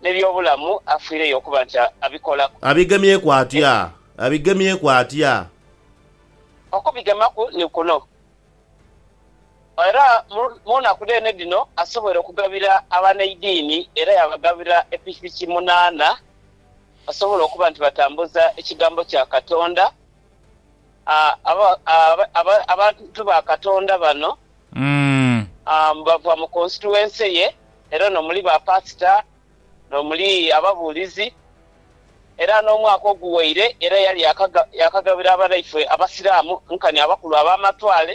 N'eby'obulamu afiireyo okuba nti abikolaku. Abigemyeku atya? Abigemyeku atya? Okubigemaku ni kuno. Era mu naku dheene dhino asoboire okugabira abaneidiini era yaabagabira epikipiki munaana basobole okuba nti batambuza ekigambo kya Katonda. Abantu ba Katonda bano bava mu konsituwense ye era ono muli ba pasita n'omuli ababuulizi era n'omwaka oguwaire era yali yakagabira abanaife abasiraamu nkani abakulu ab'amatwale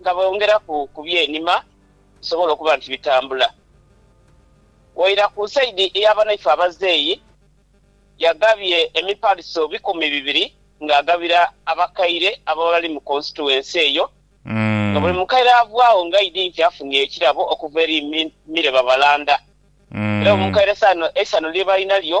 nga bongeraku ku byenima bisobole okuba nti bitambula. Waira ku saidi eya banaife abazeeyi, yagabye emipaliso bikumi bibiri ng'agabira abakaire ababa bali mu konsituwensi eyo nga buli mukaire avwaagho ng'aidhi nti afunye ekirabo okuva eri Mire Babalanda era buli mukaire eisanhu lye balina lyo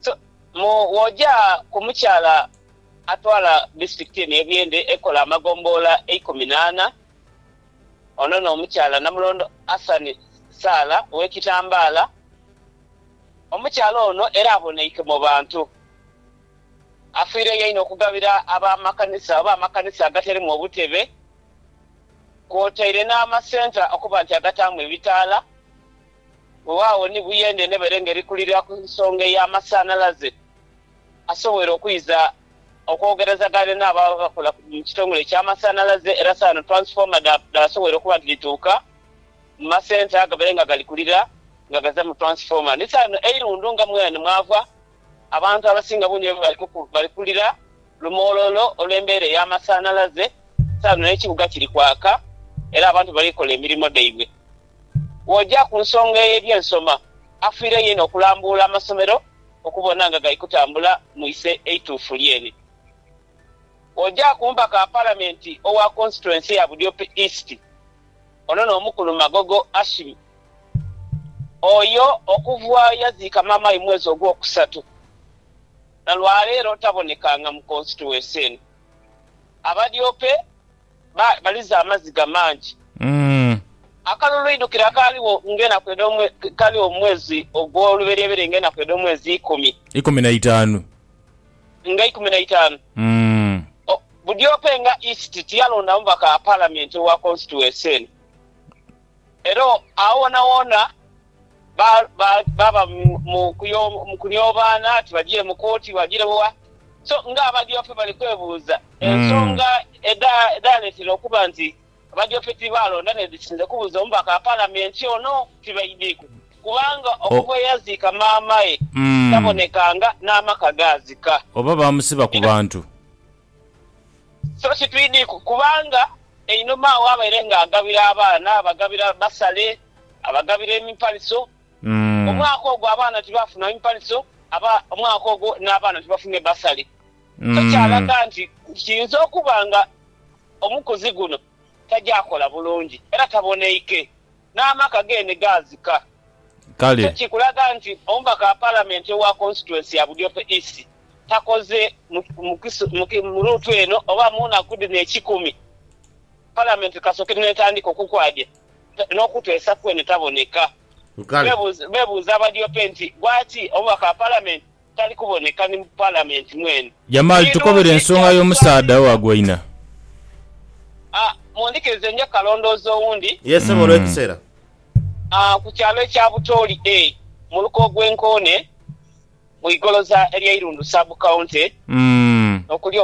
So mu woja ku mukyala atwala disitulikiti eno ye Buyende ekola amagomboola eikumi naana, ono no mukyala Namulondo Hassan Saala owe Kitambaala. Omukyala ono era aboneike mu bantu afiireyo einho okugabira aba makanisa oba amakanisa agatalimu obutebe kwotaire na masenta okuba nti agataamu ebitaala Weewaawo ni buyende n'ebere ngeri kulira ku nsonga ey'amasanhalaze asobwoire okwiza okwogerezagane n'abo abakola mu kitongole eky'amasanhalaze era saano twansifoma dhaasobwoire okuba nti dhituuka mu masenta agabere nga gali kulira nga gaza mu twansifoma. Ni saano eirundu nga mwene mwava abantu abasinga bundi bwe bali kulira lumoololo olw'embeera ey'amasanhalaze saano n'ekibuga kiri kwaka era abantu bali kola emirimo dhaibwe. Bw'oja ku nsonga ey'eby'ensoma, afiire yeene okulambuula amasomero okubona nga gali kutambula mu iso eituufu lyeene. Bw'oja ku mubaka wa Palamenti owa Konsituwensi ya Budiope East, ono n'omukulu Magogo Ashim, oyo okuva ye yaziika maamawe mu mwezi ogwokusatu na lwaleero tabonekanga mu konsituwensi eno. Abadiope ba, baliza amaziga mangi. Umm. Akalulu eidhukiro akaaligho ng'enaku edh'omwe, kaaliwo mu mwezi ogw'oluberyeberye ng'enaku edh'omwezi ikumi. Ikumi na itaanu. Nga ikumi na itaanu. Umm. O, Budiope nga East tiyalonda mubaka wa Palamenti owa konsituwensi eno. Era o, agho woonawoona. baba mu kunyobaana ati bajire mu kooti, bajire wa. So nga Abadyope bali kwebuuza ensonga edhaleetera okuba nti Abadyope tibaalonda n'edhisinze kubuza omubaka wa Palamenti ono, tibaidhiku kubanga okuva ye yaziika maamae tabonekanga n'amaka gaazika. Oba baamusiba ku bantu. So si twidhi kubanga einhuma agho abaire ng'agabira abaana, abagabira basale, abagabira emipaliso. Omwaka ogwo abaana tibaafuna mipaliso, aba omwaka ogwo n'abaana tibafunhe basale. So kyalaga nti kiyinza okuba nga omukuzi guno tagya kola bulungi era taboneike. n'amaka ge ni gaazika. Kale. Ekyo kikulaga nti omubaka wa Palamenti owa Konsituwensi ya Budiope East takoze mu luutu eno oba mu naku dhino ekikumi Palamenti kasooke n'etandika okukwadya n'okuteesa kwene taboneka. Kale. Beebuuza Badiope nti, Lwaki omubaka wa Palamenti tali kuboneka ni mu Palamenti mwene. Jamaali tukobere ensonga y'omusaadha owagoina. A, Mundhikirize nja kalondooza owundi. Ye ssebo olw'ekiseera. A, Ku kyalo ekya Butooli A, mu luka ogw'e Nkoone, mu Igoloza ery'Eirundu Sub County, okuli.